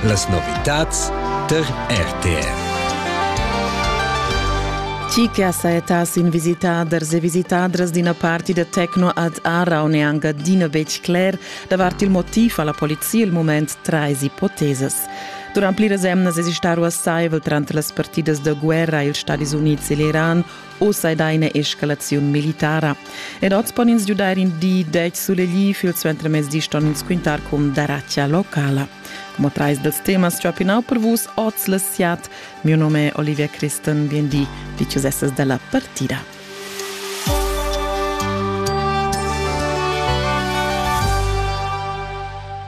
Las novitads tar RTR. Tgi che ha sajettà sin visitaders e visitadras d'ina party da techno ad Aarau n'è anc adina betg cler davart il motiv ha la polizia il mument trais ipotesas. Durant pliras emnas esista ruassaivel tranter las partidas da guerra ils Stadis Unids e l'Iran Oz ei da ina escalaziun militara. Ed oz pon ins giudair in di degl sulegli, fil suentermezdi ston ins quintar cun daratgia locala. Como trais dels temas ciapinau per vus oz le siat. Mio nome è Olivia Christen, biendi, vi ciusesses della partida.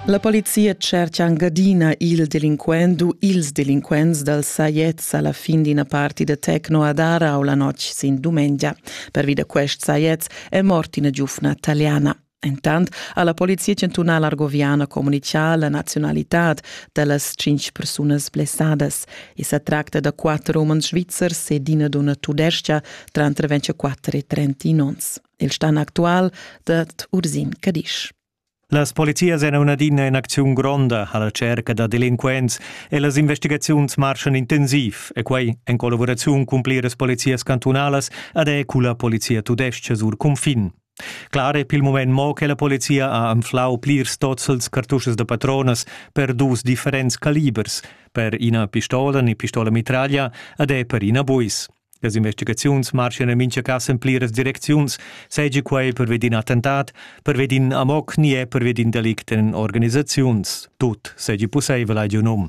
La polizia cerca angadina il delinquent u ils delinquents dal Saiet sa la fin d'ina parti da Tecno ad Arau la notg sin dumengia. Pervi da quest sajets è mort ina giufna taliana. Entant ha la polizia chantunala argoviana communitgà la nazionalitad da las tschintg persunas blessadas. I sa tracta da quatter umens svizzers ed ina dunna tudestga, tranter 24 e 30 onns. Il stan actual dat Ursin Cadisch. Las polizias èn adina en acziun gronda a la tscherca da delinquents e las investigaziuns marschan intensiv e quai en collavuraziun cun pliras polizias cantunalas ed è culla polizia tudestga sur cunfin. Clar è pil mument mo che la polizia ha anflau plirs tozzels cartuschas da patronas per dus differents calibers, per ina pistola ni pistola mitraglia ed è per ina buis. Las investigaziuns marschan en mintga cas en pliras direcziuns, seigi quei pervedi in attentat, pervedi in amok ni è pervedi in delict en organisaziuns. Tut seigi pusseivel, hai giu num.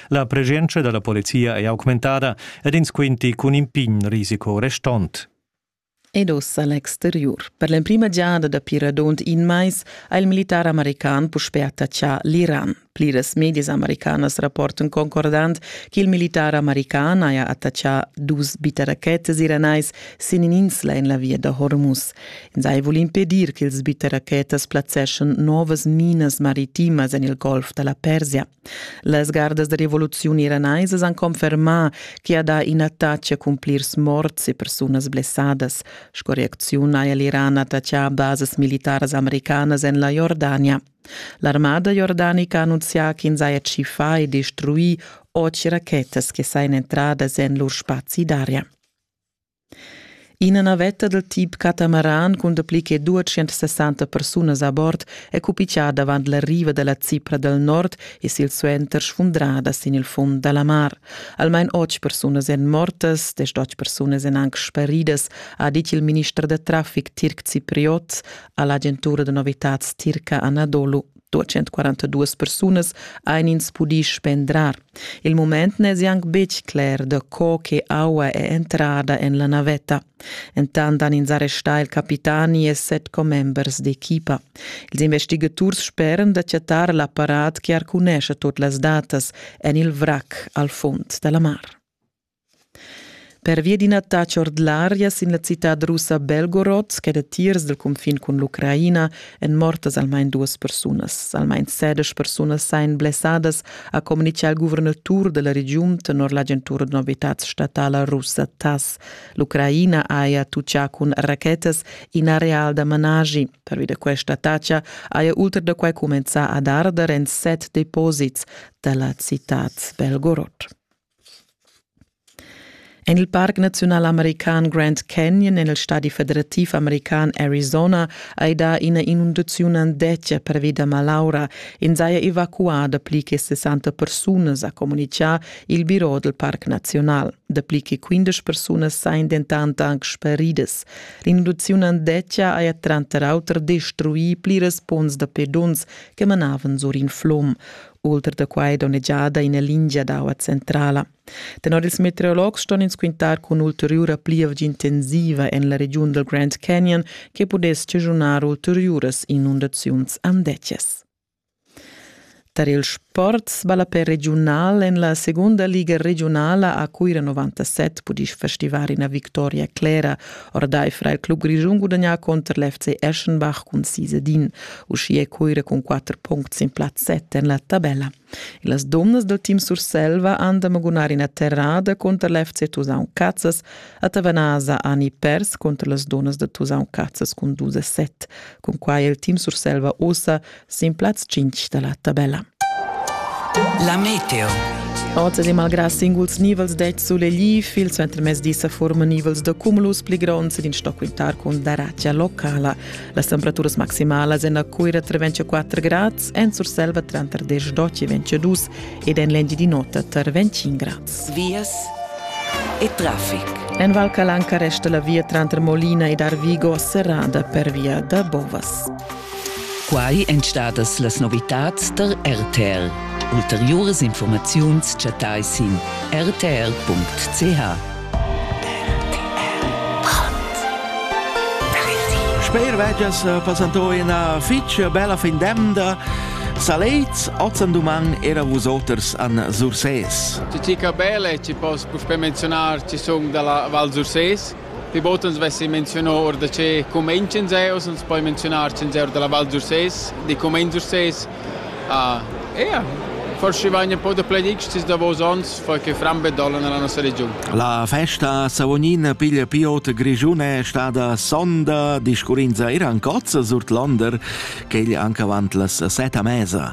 La presenza dalla polizia è augmentada ed ins quinti cun in pign risico restont. Ed ossa l'exteriur. Per l'emprima giada dapi radund in mais ha il militar american puspè attaccà l'Iran. Pliras medias americanas rapportan concordant che il militar american haja attaccà dus bitterachetas iranais sin in'insla en la via da Hormuz. Ins hai vul impedir che ils bitterachetas plazzeschan novas minas maritimas en il golf da la Persia. Las gardas da revoluziun iranaisas han confermà ch'i ha dà ina taccia cun plirs morts e persunas blessadas. Sco reacziun ha l'Iran attaccà basas militaras americanas en la Jordania. L'armada jordanica ha annunzià ch'ins haja tschiffà e destruì otg rachetas che sajan entradas en lur spazi d'aria. Ina navetta dal tip catamaran cun dapli che 260 persunas a bord è cupitgada avant la riva da la Cipra dal nord e silsuenter sfundrada sin il fund da la mar. Almain otg persunas èn mortas, desch persunas èn anc sparidas, ha dit il minister da traffic tirc cipriot a l'agentura da novitads tirca Anadolu 242 persunas ein ins pudi spendrar. Il moment ne è anche betg cler da co che aua è entrada en la navetta. Entant han ins arrestà il capitani e set commembers d'equipa. Ils investigators sperano da chattar l'apparat che arcunesce tot las datas en il vrac al fond della mar. Pervia d'ina taxa ord l'aria sin la citad russa Belgorod, che datiers dal cunfin cun l'Ucraina èn mortas almain duas persunas. Almain sedesch persunas sain blessadas, ha communitgà il guvernatur da la regiun tenor l'agentura da novitads statala russa TASS. L'Ucraina haja tutgà cun rachetas in areal da managi. Pervi da questa taxa haja ultra da quai cumenzà ad arder en set deposits da la citad Belgorod. En il parc naziunal american Grand Canyon en il stadi federativ american Arizona hai dà ina inundaziun andetga pervi da malaura. In saja evacuà dapli che 60 persunas, ha communitgà il biro dal parc naziunal. Dapli che 15 persunas sajan dentant anc sparidas. L'inundaziun andetga haja tranter auter destruì pliras punts da pedons che manavan sur in flum. ultra da quai donnegiada ina lingia d'aua centrala. Tenor ils meteorologs ston ins quintar cun ulteriura plievgia intensiva en la regiun dal Grand Canyon che pudess schagiunar ulteriuras inundaziuns andetgas. Tar il sport sballapè regiunal en la segunda liga regionala a Cuira 97 pudì festivar ina victoria clera Ordaifer il club grischun gudagnà contr l'FC Eschenbach cun sis ed in, uschia è Coira cun quatter puncts in plaz set en la tabella. E las domnas dal team Surselva han da magunar ina terrada contr l'FC Tusaun Cazzas. A Tavanasa han i pers contr las donas da Tusaun Cazzas cun dus e set. Cun quai è il team Surselva ossa sin plaz 5 da la tabella. La meteo. Oz e malgrà singuls nivels det sulegli, il suentermezdi sa forma nivels da cumulus pli gronds ed in stock quintar cun daratia locala. Las temperaturas maximalas en la Cuira tra 24 grads, en Surselva tra 10 e 22 ed en l'Engiadinota tra 25 grads. Vias e traffic. En Val Calanca resta la via tranter Molina ed Arvigo serrada per via da Bovas. Quai èn stadas las novitads tar RTL. Ulteriuras informaziuns chattai sin rtl.ch. Sper vegias passantò ina fitg bella fin d'emda. Salets, ozen duman era vusoters an Surses. Ci ca belle, ci posso puspé menzionar, ci sun dalla Val Surses. Pli bod ans vessi menzionà or da che cumenz ins è, oz ans poi menzionar ch'ins è or da la Val d'Ursès, di cumenz Ursès. Ah, ja, forse vegn un po' da pledics tis davos ons, perché frambe dolla nella nostra regiun. La festa Savognin piglia piot grigiune è stada sonda, discurrinza era ancozza surt Londer, quegl anche avant las seta mesa.